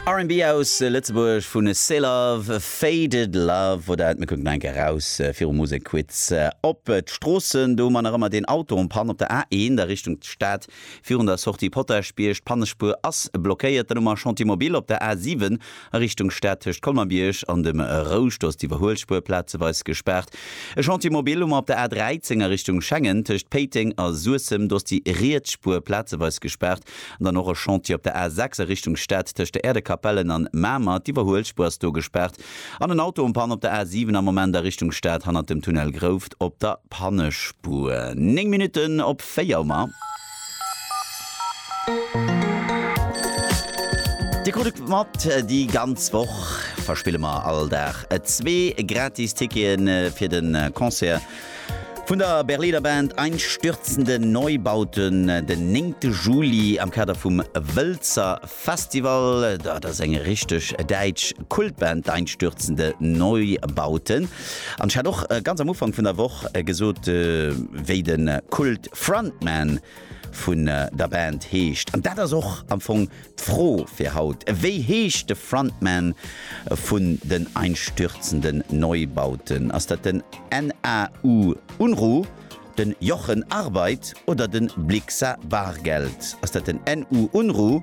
R&B aus Lëtzebuerg vu Seelove, Faded Love wor dat. Mir kucken nach eng Kéier eraus virum Musekquiz op d'Stroossen. Do hu mer nach ëmmer deen Auto en panne op der A1 a Richtung Stad. Virun der Sortie Potaschbierg, d'Pannespuer ass blockéiert. Dann hu mer Chantier Mobil op der A7 A Richtung Stad tëscht Colmer-Bierg an dem Rouscht ass d'Iwwerhuelspuer plazeweis gespaart. E Chantier mobil hu mer op der A 13 a Richtung Schengen, tëscht Péiteng a Suessem, do ass déi riets Spuer plazeweis gespaart. An dann och e Chantier op der A 6 a Richtung Stad tëscht der Äerdekapellen an Mamer. D'Iwwerhuelspuer ass do gespaart. An en Auto um Panne op der A 7 am Moment a Richtung Stad hannert dem Tunnel Grouft op der Pannespuer. Néng Minutten op véier hu mer. Dir krut et mat, déi ganz Woch verspille mer all Dag zwee gratis Ticketen fir de Concert vun der Berliner Band Einstürzende Neubauten den néngte Juli am Kader vum Wëlzer Festival. Dat ass eng richteg däitsch Kultband, d'Einstürzende Neubauten. An ech hat och ganz am Ufank vun der Woch gesot, wéi de Kult Frontman vun der Band heescht. An dat ass och am Fong d'Fro fir haut, Wéi heescht de Frontman vun den Einstürzenden Neubauten? Ass dat den NAU Unruh, den Jochen Arbeit oder den Blixa Bargeld? Ass dat den NU Unruh?